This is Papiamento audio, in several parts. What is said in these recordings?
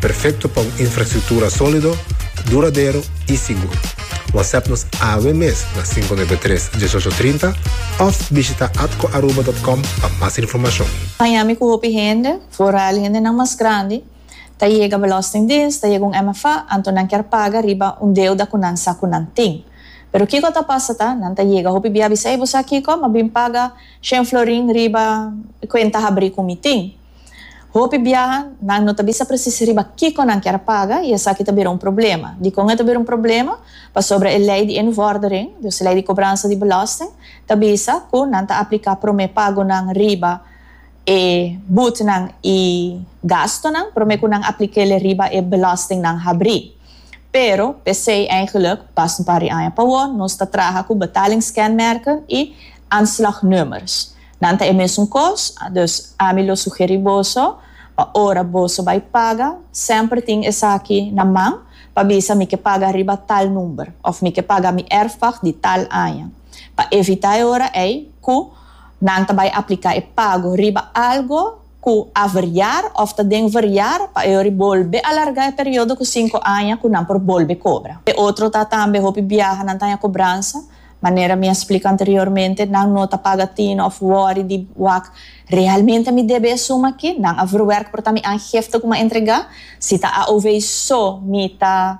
Perfecto pa un infrastructura solido, duradero y sigur. WhatsApp nos awe mes na cinco nuebe tres, diesocho trinta of bishita atcoaruba.com pa mas informacion. Miami cu hopi hende, vooral hendenan mas grandi, ta yega Belastingdienst, ta yega un MFA, anto nan kier paga riba un deuda cu nan sa cu nan tin. Pero kico ta pasa ta, nan ta yega hopi bia bisa, ey bo sa kico? Ma bin paga shen florin riba e cuenta habri cu mi tin. Hopi biaha, nan no ta bisa presis riba kiko nan kier a paga i esaki ta bira un problema. Dikon e ta bira un problema? Pasobra e lei di e nuvòrdering, dus e lei di kobransa di belòsting, ta bisa ku nan ta apliká promé pagonan riba e butnan i gastunan promé ku nan apliká el riba e belòstingnan habrí. Pero, p'esei eigelijk, pas un par di aña pa wou, nos ta traha ku betalingskenmerken i aanslagnummers. Nan ta e mesun kos, dus ami lo sugeri boso pa ora boso bai paga semper tin esaki na man pa bisa mi ke paga riba tal number of mi ke paga mi erfpag di tal aña pa evita e ora ei ku nan ta bai aplika e pago riba algo ku a verjar of ta den verjar pa e ora bolbe alarga e periodo ku sinku aña ku nan por bolbe kobra. E otro ta tambe hopi biaha nan ta haña kobransa Manera mi a splica anteriormente, nan no ta paga tina of worry di wak, Realmente mi debe e suma aki? Nan a verwerk por ta mi aangifte cu mi a entrega? Si ta AOV so mi ta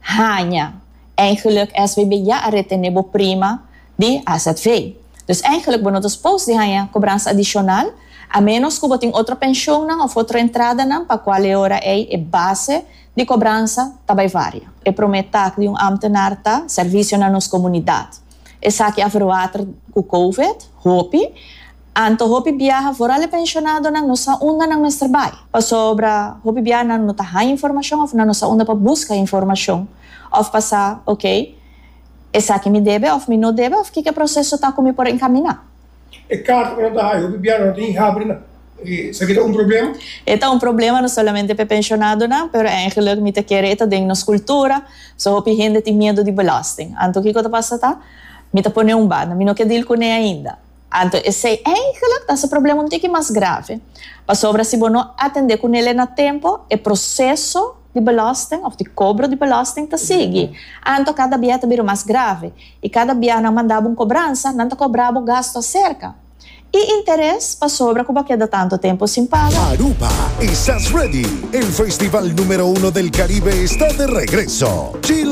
haña? Eigenlijk SVB ya a retene bo prima di azv. Dus eigenlijk bo no ta supos di haña cobransa adicional, a menos cu bo tin otro pensioennan of otro entradanan pa cual e ora ey e base Di kobransa ta bai varia. E promé tak di un ámtenar ta sèrvisio na nos komunidat. Esaki a verwater ku kowid hopi. Anto hopi biaha, foral e penshonadonan, no sa unda nan mester bai. Pasobra hopi biaha nan no ta haña informashon òf nan no sa unda pa buska informashon òf pa sa, Okey, esaki mi debe òf mi no debe òf kiko e proseso ta ku mi por enkaminá. E karta ku nan ta haya hopi bia no ta hinga habri nan. Esaki ta un problema? E ta un problema no solamente pa e penshonadonan, pero eingelik mi ta kere e ta den nos kultura. So hopi hende tin miedu di belasting. Anto kiko ta pasa ta mi ta pone un banda, mi no ke dil kuné ainda. Anto esei eingelik ta hasi problema un tiki mas grave, pasobra si bo no atendé kunelé na tempo, e proseso. di belasting of di kobro di belasting ta sigui. Anto kada bia ta bira mas grave i kada bia nan mandabo un kobransa nan ta kobrabo gasto aserka i interes pasobra ku bo a keda tantu tempu sin paga. Aruba, Esas Ready? El festival numero uno del Caribe está de regreso! Chill.